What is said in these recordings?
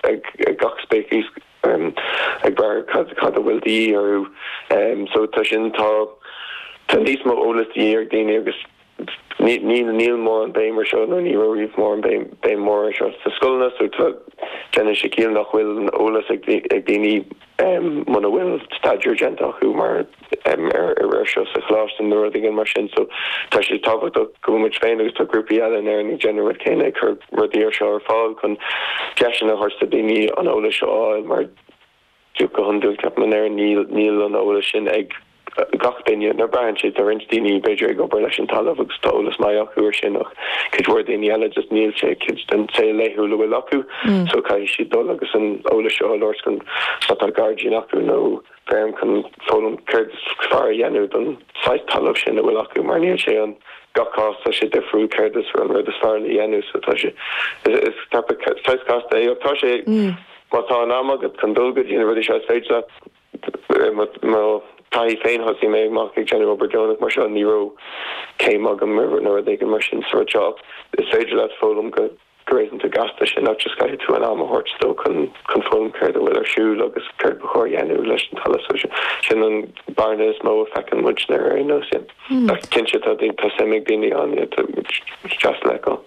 ag gach speiceas ag brath ar cad a bhfuil de dhíth orthu. So tá sin, tá níos mó eolas de dhíth ag daoine agus níl mórán béim ar seo nó ní raibh riamh mórán béim ar seo sna scoileanna. So tá déanann sé ciall nach bhfuil an eolas ag daoine muna bhfuil staidéar déanta acu ar, ar seo sa Choláiste nó rud éigin mar sin. So, tá sé tábhachtach go bhfuil muid féin agus tá grúpaí eile in Éirinn ag déanamh rud céanna, ag cur rudaí ar seo ar fáil chun deiseanna a thabhairt do daoine an eolas seo a fháil mar go hiondúil ceapaim ar aon nós níl an eolas sin ag gach duine, nó braitheann sé, tá roinnt daoine, b'fhéidir, ag obair leis an talamh agus tá eolas maith acu ar sin ach cuid mhór daoine eile just níl sé, cuid den saol laethúil a bhfuil acu so caithfidh siad dul agus an eolas seo a lorg chun má tá gairdín acu nó feirm chun foghlaim céard is fearr a dhéanamh don saghas talamh sin a bhfuil acu mar níl sé an gach cás tá sé difriúil céard is an rud is fearr le dhéanamh so tá sé, is topic saghas casta é ach tá sé, má tá an am agat chun dul go dtí na rudaí seo is féidir leat. I mo thaithí féin, thosaigh mé amach ag déanamh obair deonach mar seo, ní raibh céim agam nó rud éigin mar sin sa rud seo. Is féidir leat foghlaim go réasúnta gasta, ach just caithfidh tú an am a thabhairt dó chun foghlaim céard a bhfuil ar siúl agus céard ba chóir a dhéanamh leis an talamh. So sin an bearna is mó a feiceann muidne ar aon nós. Ach cinnte tá suim ag daoine ann, tá sin deas le feiceáil.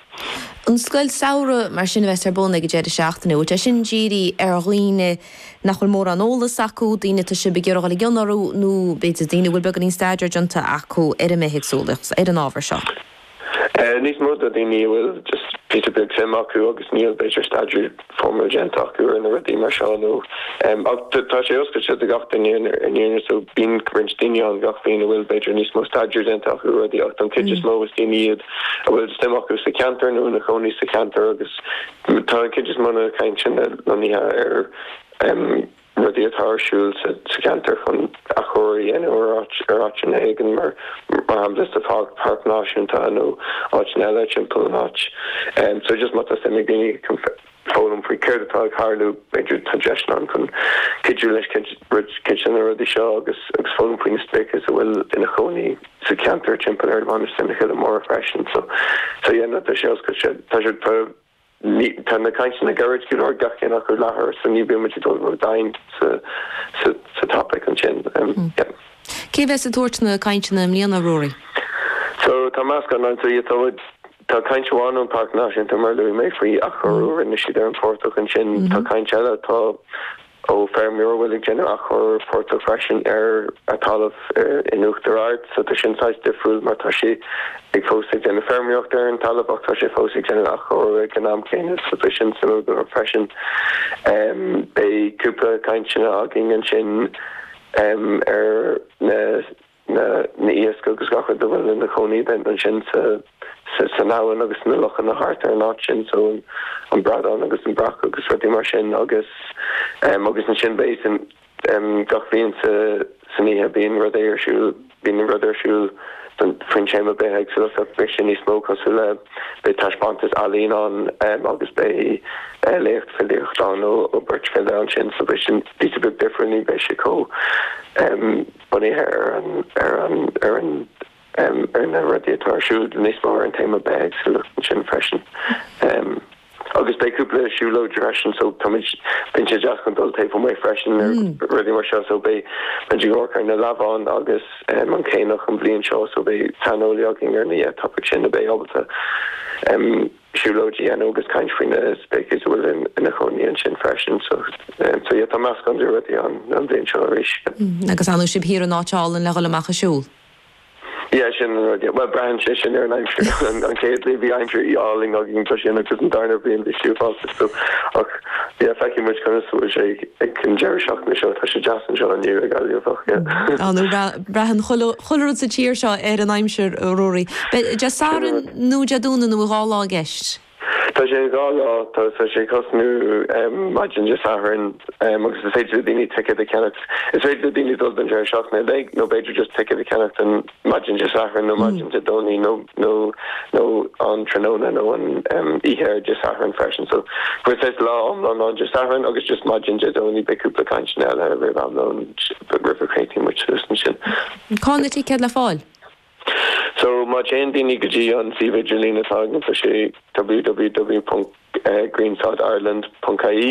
An scoil samhraidh mar sin a bheas ar bun ag an deireadh seachtaine, bhfuil sé sin dírithe ar dhaoine, nach bhfuil mórán eolas acu, daoine atá sibh ag iarraidh dul i gcion orthu nó b'fhéidir daoine a bhfuil beagáinín staidéir déanta acu ar an mbithéagsúlacht, ar an ábhar seo? Níos mó do dhaoine a bhfuil just píosa beag suim acu agus níl b'fhéidir staidéar foirmiúil déanta acu ar na rudaí mar seo nó. Ach tá sé oscailte do gach duine ar ndóigh so bíonn roinnt daoine ann gach bliain a bhfuil b'fhéidir níos mó staidéir déanta acu ar rudaí ach don chuid is mó is daoine iad a bhfuil suim acu sa cheantar nó ina chónaí sa cheantar agus Tá an chuid is mó de na cainteanna lonnaithe ar rudaí atá ar siúl sa cheantar chun athchóiriú a dhéanamh ar áiteanna éigin, mar shampla sa Pháirc Náisiúnta nó áiteanna eile timpeall an áit. So don chuid is mó tá suim ag daoine chun foghlaim faoi céard atá ag tharlú, b'fhéidir tá deiseanna ann chun cuidiú leis cuid de na rudaí seo agus foghlaim faoi na spéiceas a bhfuil ina chónaí. sa cheantar timpeall ar Mhainistir na Coille Móire freisin. So, so yeah, no, tá sé oscailte, tá sé, tá, ní, tá na cainteanna gairid go leor, gach ceann acu leathuair, so ní bhíonn muid ag dul ródhomhain sa, sa, sa topaic ansin. Um, yeah. Cé bheas ag tabhairt na cainteanna i mbliana, Ruairí? So, tá meascán ann, so yeah, tá muid, tá caint amháin ón Páirc Náisiúnta mar a luaigh mé faoi athchóiriú a rinne siad ar an bportach ansin, tá caint eile, tá, Ó feirmeoir a bhfuil ag déanamh athchur portach freisin ar a talamh in Uachtar Ard. So tá sin saghas difriúil mar tá sé ag fós ag déanamh feirmeoireacht ar an talamh ach tá sé fós ag déanamh athchur ag an am céanna. So tá sin suimiúil dom freisin. Beidh cúpla cainteanna againn ansin ar na na n-iasc agus gach rud a bhfuil ina chónaí ansin san abhainn agus sna lochanna thart ar an áit sin, so an bradán agus an breac agus rudaí mar sin agus agus ansin beidh gach bhliain san oíche bíonn rud ar siúl, bíonn rud ar siúl don, faoin téama bithéagsúlacht beidh sé níos mó cosúil le, beidh taispeántas ealaíne ann agus beidh léacht filíochta ann ó beirt file ansin so beidh sin píosa beag difriúil ní bheidh sé chomh. Bunaithe ar na rudaí atá ar siúl níos mó ar an téama bithéagsúlacht ansin freisin agus beidh cúpla siúlóid freisin so táimid bíonn sé deas chun dul taobh amuigh freisin ar rudaí mar seo so beidh muid ag amharc ar na leamháin agus an caonach an bhliain seo so beidh saineolaí againn ar na topics sin a bheidh ábalta siúlóid a dhéanamh agus caint faoi na speicis a bhfuil ina chónaí ansin freisin. So so yeah tá meascán de rudaí ann an bhliain seo arís. Mm agus fhanadh sibh thiar in áit álainn le dhul amach ag siúl? Yeah sin an rud yeah. Bhuel braitheann sé sin ar an aimsir. An an chéad bhliain bhí aimsir álainn againn tá sin agus an darna bliain bhí sé uafásach ach yeah feicfidh muid conas a bhfuil sé ag an deireadh seachtaine seo tá sé deas anseo inniu i Gaillimh ach yeah. Á nó bhea Braitheann chuile rud sa tír seo ar an aimsir, a Ruairí. Beidh Dé Sathairn nó Dé Domhnaigh nó an dá lá i gceist. Tá sé dhá lá. Tá sé ag tosnú maidin Dé Sathairn agus is féidir le daoine ticéad a cheannacht. Is féidir le daoine dul don deireadh seachtaine uilig nó b'fhéidir just ticéad a cheannacht don maidin Dé Sathairn nó maidin Dé Domhnaigh nó nó an tráthnóna nó an oíche ar Dé Sathairn freisin. So saghas lá iomlán ann Dé Sathairn agus just maidin Dé Domhnaigh. Beidh cúpla cainteanna eile roimh am lóin. Red River Katie Richardson sin. Cá bhfuil na ticéid le fáil? So, má théann daoine go dtí an suíomh idirlín atá againn, tá sé www.greensodireland.ie.